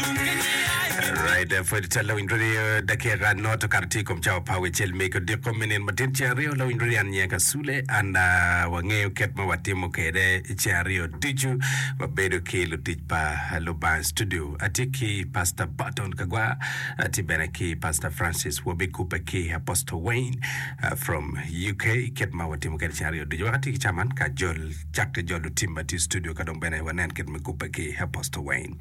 Alright, eh, pwod cal lawiny dodi eh, dakika not okato tye i kom cawa pa wecel me kodiko me nino matin ceng aryo lawiny dodi an nyeka sule an ah, wangeyo ket ma watimo kwede ceng aryo ducu wabedo ki lutic pa lubanga studio atye ki pastor Barton Kagwa atye bene ki pastor Francis Wobi Kupe ki Apostle Wayne ah, from UK ket ma watimo kwede ceng aryo ducu wakati ki caman ka jol cak ki jol lutim ma tye i studio ka dong bene wanen ket me kupe ki Apostle Wayne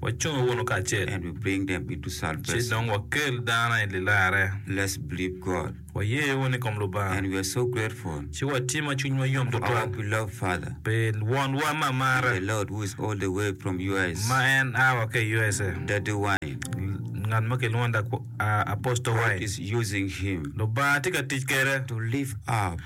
Wacung wunu kacel. And we bring them into Ci salvation. dong wakel dano i lilarre. Let's believe God. Waye wunu i kom Lubanga. And we are so grateful Ci watye ma cwinywa yom for our tutwal beloved Father pi Wonwa ma and marre the Lord who is all the way from US, ma en a wa ki i USA, Daddy Wayne. L- ngat ma kilwongo ni Dak- a- Apostle God Wayne. is using him Lubanga tye ka tic kwede. to lift up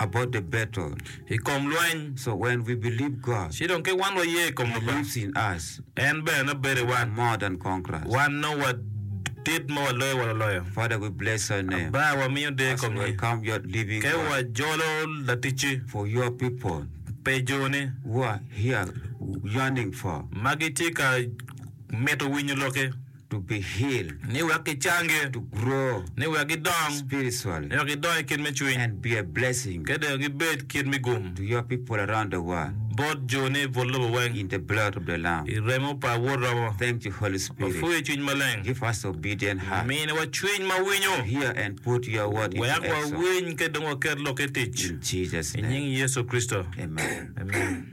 about the battle. I kom lweny. So when we believe God. Ci dong kit wan waye i kom Lubanga. Lives in us. En bene nongo bedo i wan. We're more than conquerors. Wan nongo wadit ma waloyo wa loloyo. Father we bless your name. Aba wamiyo deyo i kom nyi. As we welcome your living God. Ka wajolo laticci. For your people. Pi joni. Who are here yearning for. Ma gitye ka mito winyo lokki. to be healed, ni wek gicangi, to grow, ni wek gidong, spiritually, ni wek gidong i kit me cwiny, and be a blessing, ki dong gibed kit me gum, to your people around the world, bot joni i but lobo weng, in the blood of the Lamb, i remo pa Awor romo. Thank you Holy Spirit, Wapwoyi i Cwiny Maleng, give us obedient heart, miniwa cwiny ma winyo, to hear and put your word into action, wek wawiny ki dong waket lokki i tic, in Jesus name, i nying Yecu Kricito, amen. Amen.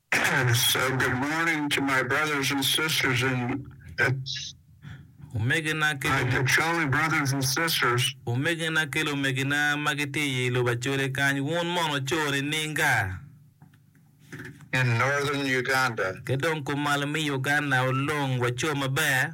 Omegina ki lumegina ma gitye i lobo Acholi kany, wun mono coo nininga? Ki dong kumalo me Uganda olong wa coo maber?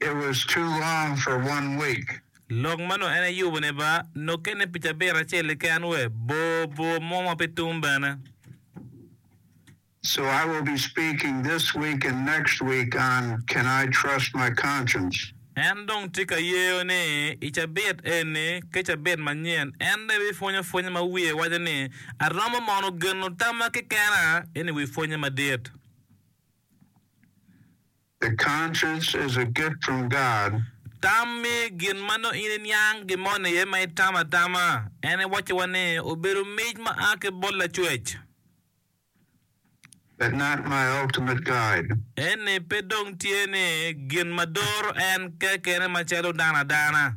It was too long for one week. Lok ma nongo en eyubo ne ba nok kene pi cabit acel keken we bor bor mo ma pe tum bene. So I will be speaking this week and next week on Can I Trust My Conscience? En dong tye ka yeyo ni i cabit eni ki cabit manyen en dong ebi pwonyo pwonye ma wiye waco ni Aromo mono geno tamma kekena eni wi pwonye madit. The conscience is a gift from God. Tam me gin ma nongo in iniang gimoni iye ma itamo atama en iwacciwa ni obedo mic ma a ki bot Lacwec. But not my ultimate guide. Eni pe dong tye ni gin ma doro en kekene macalo dano adana.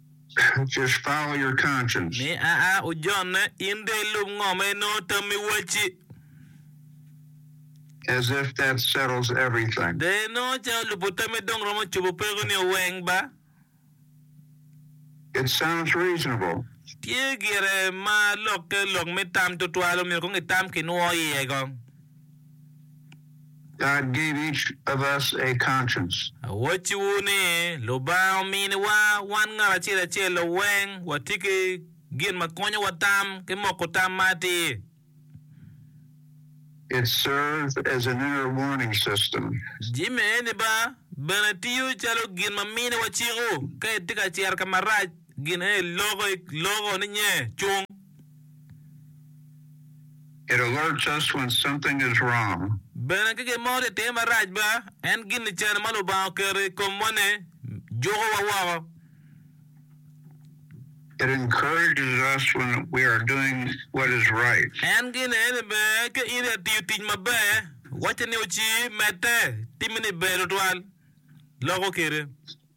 Mi aa ojonne, in dong ilub ngo ma inongo tammi wacci. De inongo calo lubo tammi dong romo cobo pekoni o weng ba? Tye gire ma lokke lok me tam tutwal omyero kong itam ki nwo iye kong. God gave each of us a conscience. Awacciwu ni, Lubanga ominiwa wan ngat acel acel weng wati ki gin ma konyowa tam ki moko tam ma atir. It serves as an inner warning system. Jami eni ba bene tiyo calo gin ma miniwa ciko ka itye ka cito ka marac, gin eni loko ni nye cung. Bene ka gin mo tye ka timme marac ba, en gin licen ma Lubanga oketo i komwa-ni jukowa woko. En gin eni bene ka in itiyo tic maber, wacce ni wuci, medde, timme ni ber tutwal, loko kite.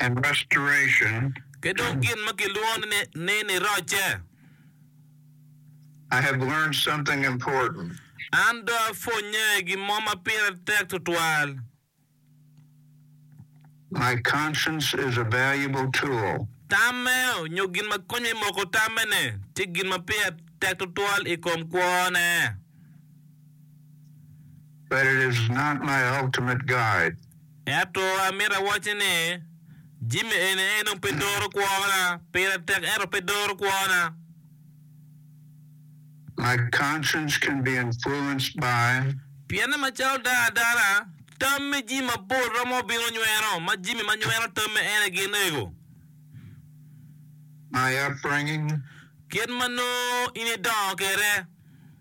and restoration. Ki dong gin ma kilwongo ni nirocce. I have learned something important. An dong apwonnye gin mo ma pire tek tutwal. My conscience is a valuable tool. Tamme, nyo gin ma konyo me moko tamme-ni, tye gin ma pire tek tutwal i kom kwone. but it is not my ultimate guide. Ento amito awacci ni, Jimmy eni en dong pe doro kwona, pire tek ento pe doro kwona. My conscience can be influenced by. Pienna macalo dano adana, tam me jami mapol romo bino nyweno, ma jami ma nyweno tamme ene gin ego. My upbringing. Kit ma nongo in idongo kwede.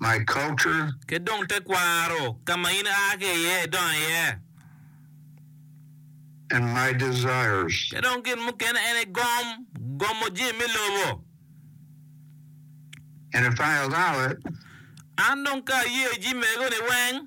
my culture. Ki dong tekwaro, ka ma in aa ki iye, idongo iye. And my desires. Ki dong gin mukene en aye gom, gomo jami me lobo. And if I allow it. An dong ka ayeyo jami mego-ni weng.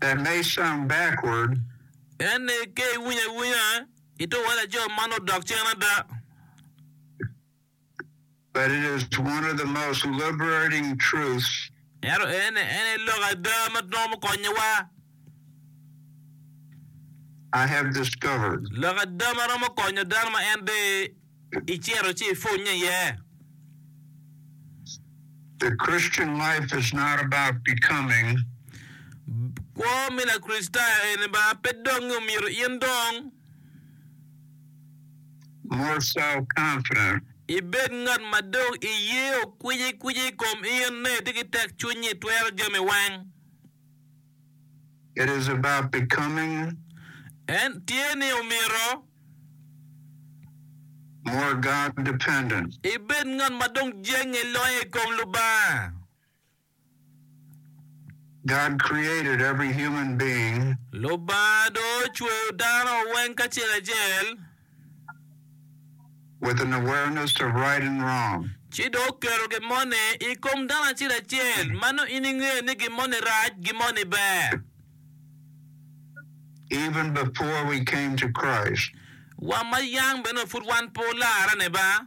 That may sound backward. En ni ke iwinyo awinya i to wa laco man odok cen ada. But it is one of the most liberating truths. Ento en ni en aye lok ada ma nongo mukonyo wa. I have discovered. Lok ada ma romo konyo dano ma en de. Icito ci ipwonye iye. The Christian life is not about becoming. Kwo me Lakricitayo eni ba pe dongngi omyero in dong. More self-confident. Ibed ngat ma dong iye okwicikwici i kom in ne itye ki tekcwiny ni itwero jami weng. It is about becoming. En tye ni omyero. More God dependent. Ibed ngat ma dong jenge loyo i kom Lubanga. God created every human being. Lubanga dong ocweyo dano weng kacel acel. with an awareness of right and wrong. Ci dok keto gin moni i kom dano acel acel, ma nongo in ingeyo ni gin moni rac, gin moni ber. Even before we came to Christ. Wa ma yang bene pud wan pe olarane ba.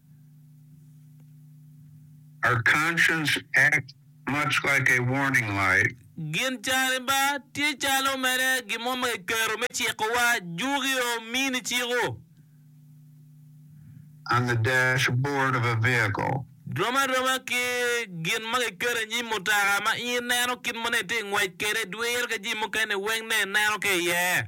Our conscience act much like a warning light. Gin cariba tye calo mere gin mo ma kiketo me cikowa, juki o mini ciko. On the dash board of a vehicle. Rom aroma ki gin ma kiketo i nyim mutoka ma in ineno kit ma nongo itye ka ngwec kwede dwiro ki jami mukene weng nongo ineno ki iye.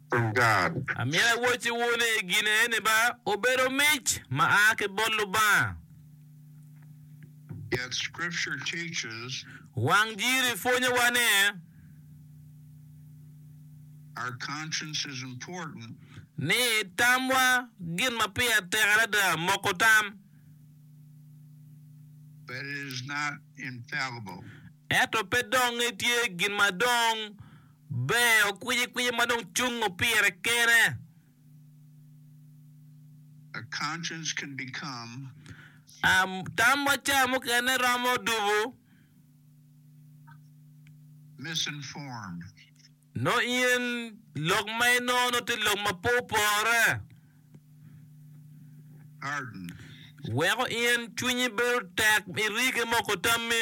from God. Amyero awocciwu ni gin eni ba obedo mic ma a ki bot Lubanga. Yet Scripture teaches. Wang Jiri pwonyowa ni. Our conscience is important. Ni tamwa gin ma pire tek adada moko tam. But it is not infallible. Ento pe dong etye gin ma dong. Ber okwicikwici ma dong cungo pire kene. Tam ma ca mukene romo dubo. Nongo in lok ma inongo nongo tye lok ma pe opore. Weko in cwinyi bedo tek irige moko tammi.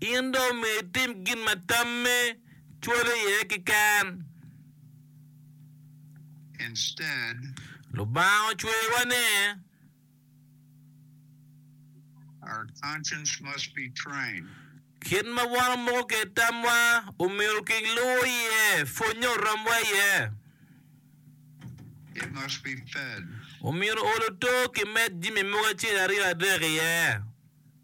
In dong omyero itim gin ma tamme cwalo iye keken. Instead. Lubanga ocweyowa ne. Our conscience must be trained. Kit ma wan omoko kwede tamwa omyero king luwo iye, pwonye oromwa iye. It must be fed. Omyero ol oto kimed jami mogo acel aryo adek iye.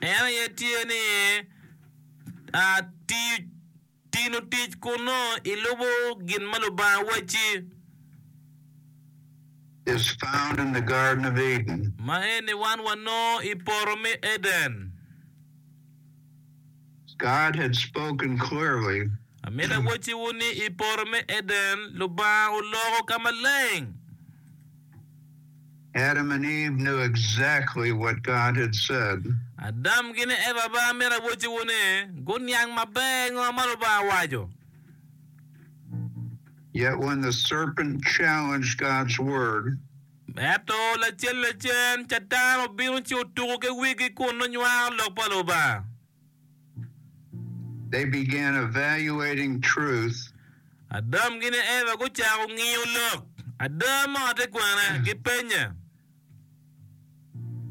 En aye tye ni tino tic kun nongo ilubo gin ma Lubanga wacci, ma eni wan wanongo i poto me Eden. God had spoken clearly. Amito awacciwu ni i poto me Eden, Lubanga oloko ka maleng. Adam and Eve knew exactly what God had said. Adam ki ni Eva ba amito awacciwu ni guniang maber ngo ma Lubanga owaco. Yet when the serpent challenged God's word. Ento lacen lacen Catan obino ci otuko ki wigi kun nongo nywako Lok pa Lubanga. They began evaluating truth. Adam ki ne Eva gucako ngiyo lok. Ada ma ote kwene gipenye.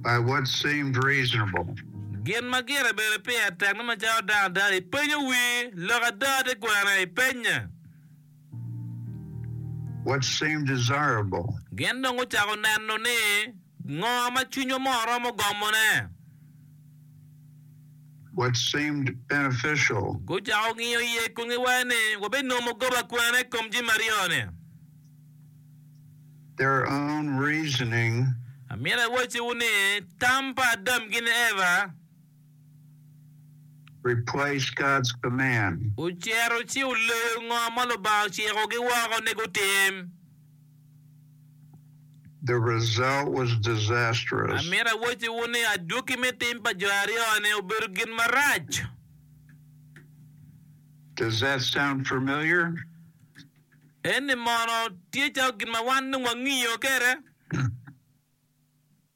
By what seemed reasonable. Gin ma gire bedo pire tek me macalo dano adada. Ipenyo wii lok ada te kwene? Ipenye. what seemed desirable. Gin dong gucako neno ni ngo ma cwinywa mo romo gomone. what seemed beneficial. Gucako ngiyo iye kun giwaco ni wabinongo goba kwene i kom jami aryo-ni. their own reasoning. Amito awacciwu ni tam pa Adam ki Eva. Replace God's command. Ocito ci oleyo ngo ma Lubanga ociko gi woko ni gutim. The result was disastrous. Amito awacci wu ni adwoki me tim pa jo aryo ni obedo gin marac. Does that sound familiar? En ni mono tye calo gin ma wan dong wangiyo kede?